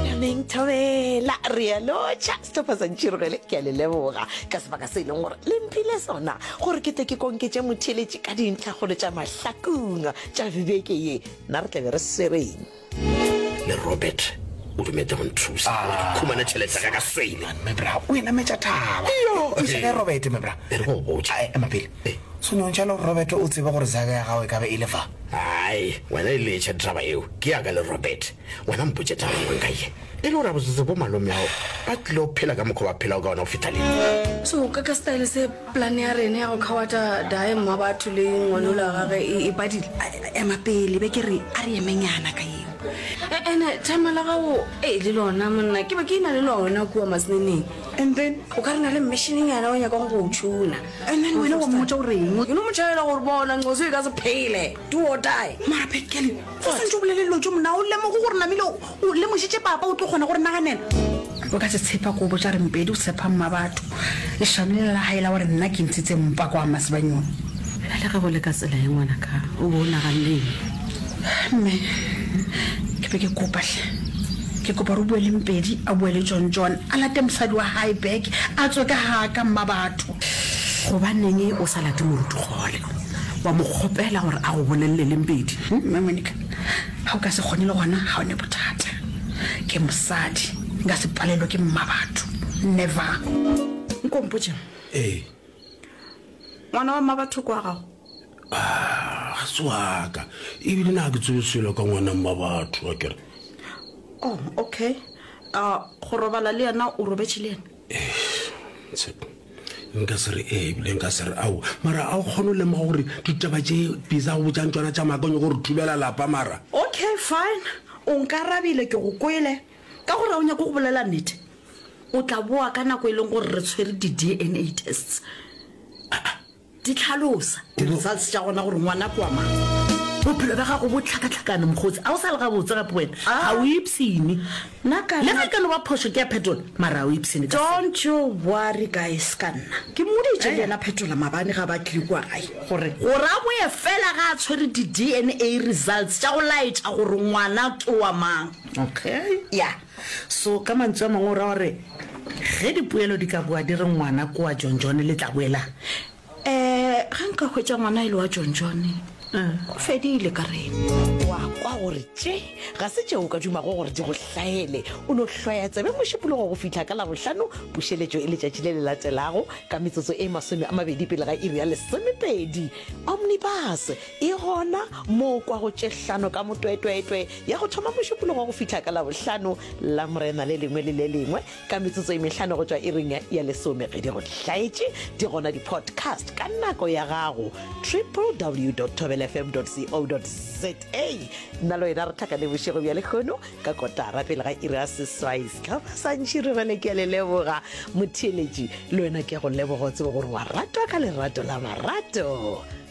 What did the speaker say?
nameng thobela re ya lotšha setophatsantšhirogele ke a le leboga ka sebaka se e leng gore le mphile sona gore ke tle ke konketše motheletše ka dintlhagolo tša mahlakong tša bibeke ye na re tlabe re swereng le robert o dumetse go nthusa ah. khumana tšhelete ka ka swele mebra o enametša thaba thusa ka robert mebra e re go botša eh, ema pele eh. sone ntšha le robert o tsebe gore zaka ya gago e ka be e le fa ai wena e letšha ditaba eo ke yaka le robert Wena mpotše taba nngwe nka ye e le gore gabotsetse bo malome ao ba tlile go phela ka mokgwa ba phelago ka ona go feta lena. So ka ka style se plan ya rene ya go khawata dae mma batho le ngwanola gage e, e badile. Ema pele be ke re a re emenyana ka yeo. E, ene thama la gago e le lona monna ke be ke ina le lona kua masneneng. And then o ka re na le mmishining yana o nyakang go tšhuna. And then wena wa mmotša o reng? Ke no mo tšhaela gore bona nqoso e ka se phele. do or die mara bad kelly o swantse o bolele dilo tso mona o lemogo gore namile o lemošitše papa o tlo kgona gore naganela o ka se tshepa kobo tša rempedi o tshepa mma batho lešano le la gae la gore nna ke ntshitse mpa kwa masebanyong le ge go le ka tsela ye ngwana ka o bo o naganeng mme ke be ke kopahle ke kopa re bue le mpedi a bue le tsontsone a late mosadi wa gae beke a tswe ka ga ka mma batho Gobaneng o sa late Moruti kgole wa mo kgopela gore a go bolelele le Mpedi? Mme Monica, ga o ka se kgone le gona ga o ne bothata. Ke mosadi, nka se palelwe ke mma batho. Never. Nko mpotšeng. Ee. Ngwana wa mma batho kwa gago? Ah, ga se waka. Ebile na ke tsebe selo ka ngwana mma batho wa kere. Oh, okay. Uh, go robala le yena o robetše le yena? nka se re ee ebile nka se re ao mara a o kgone go lemoga gore ditaba tše bisa go botšang tsona tša makanyo gore thubela lapa mara okay fine o nkarabile ke go kwele ka gore o nyako go bolela nnete o tla boa ka nako e leng gore re tshwere di-dna tests Di hlalosa di-results tša gona gore ngwana ke wa mang. Bophelo bja gago bo hlakahlakane, mokgotsi. A o sa le gabotse gape wena. Ga o ipshine. Nna ka nna. Le ge e ka no ba phošo ke ya Phetola, mara ga o ipshine ka seo. Don't you worry, guys, ka nna. Ke mmoditše le yena Phetola maabane ga ba tlile kua gae gore. Gore a boe fela ge a tshwere di-DNA results tša go laetša gore ngwana ke wa mang. Okay. Ya. So, ka mantsu a mangwe o ra gore ge dipoelo di ka boa di re ngwana ke wa John John le tla boelang? Ee, ge nka hwetša ngwana e le wa John John, go fedile ka rena. O a kwa gore tše ga se tšeo o ka dumago gore di go hlahele. O no hlwaya tsebe Mošupologo go fihla ka Labohlano, pušeletšo e letšatši le le latelago ka metsotso e masome a mabedi pele ga iri ya lesomepedi. Omnibus! E gona mo o kwago tše hlano ka motwetwetwe, ya go thoma mošupologo go fihla ka Labohlano, Lamorena le lengwe le le lengwe ka metsotso e mehlano go tšwa iring ya lesome. Ge di go hlaetše, di gona di-podcast ka nako ya gago, www.thobelfm.co.za. Nna le wena re hlakane bošego bja lehono ka kotara pele ga iri ya seswai. Se ka ba sa ntši re rele ke a le leboga. Motheeletši, le wena ke a go leboga, o tsebe gore wa ratwa ka lerato la marato.